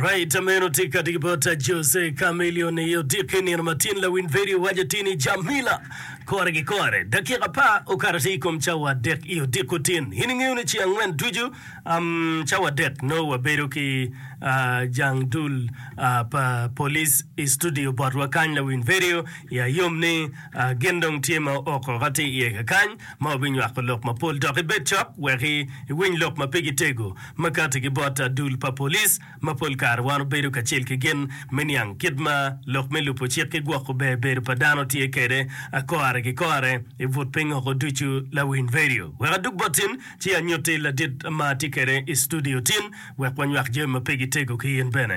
Right meno tika tiki bot a Jose Chameleon i odiki nino ma tin lawiny vedio waco tin i Jamila kore ki kore dakika pa okato atir ikom cawa adek i odiko tin in ingeyo ni ci angwen ducu um, cawa adek noo wabedo ki uh, jang dul uh, pa police i studio botwa kany lawiny vedio i ayom ni uh, gin dong tye ma ook oko atir iye kakany ma wabinywako lok mapol dok ibed cok wek i, iwiny lok ma pigi tego Makati ki bot dul pa police ma pol kare wan obedo kacel ki gin me niang kit ma lok me lubo cik ki gwoko ber bedo pa dano tye kede kore ki kore i but piny oko ducu lawiny radio wek adug bot tin ci anyuti ladit ma tye kede i studio tin wek wanywak jami ma pe gi tego ki in bene.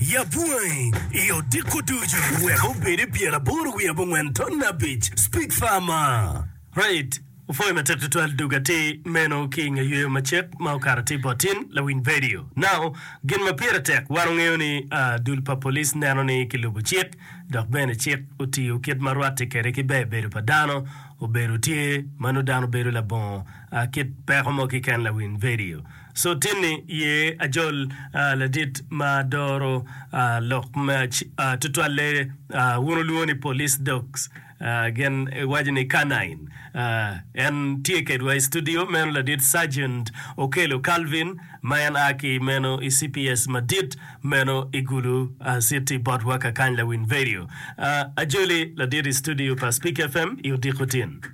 Yab wangi i odiko ducu. Wek obed i pyer aboro wiye abongwen ton abic. Speak far ma. Right, opwoyo matek tutwal dog atir meno ki inge yweyo macek ma okato atir bot tin lawiny vedio. Now, gin ma pire tek wan ongeyo ni dul pa police neno ni ki lubo cik dok bene cik otiyo kit ma rwatti kede ki ber bedo pa dano obedo tye ma nudano bedo labongo kit peko mo kiken lawiny vedio. Sotini ye ajol ladit ma doro lok mac tutwalle. Wun wulwongo ni police dogs, gin giwaco ni canine. En tye kedwa i studio meno ladit Sergeant Okello Calvin ma en a ki meno i cps madit meno i Gulu city botwa kakany lawiny vedio. Ajoli ladit i studio pa Speak FM i Odiko tin.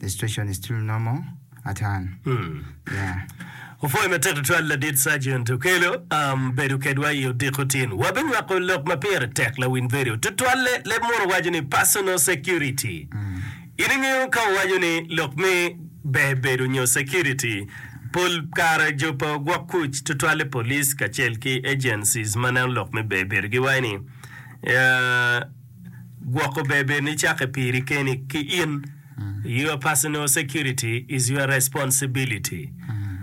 The situation is still normal atan yeah. Opwoyo matek tutwal ladit Sargent Okello bedo kedwa i odiko tin. Wabinywako lok ma pire tek lawiny bedo tutwalle leb muno waco ni personal security. In ingeyo ka wawaco ni lok me ber bedo nyo security, pol kare jo pa ogwok kuc tutwalle police kacel ki agencies ma neno lok me ber bedo giwaco ni, gwoko bebe ni cake piri keni ki in your personal security is your responsibility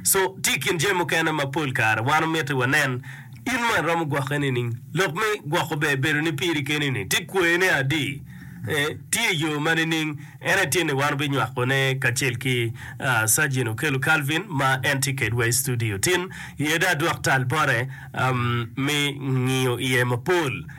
so tye i kin jami mukene ma pol kare wan omiti wanen in ma iromo gwokke nining lok me gwoko ber bedo ni piri keni ni tye kwer ne adi eh, tye i yo ma nining en aye tye ni wan obinywako ne kacel ki ah, surgeon okelo Calvin ma en tye kedwa i studio tin iye da dok tal bote am, mi ngiyo iye mapol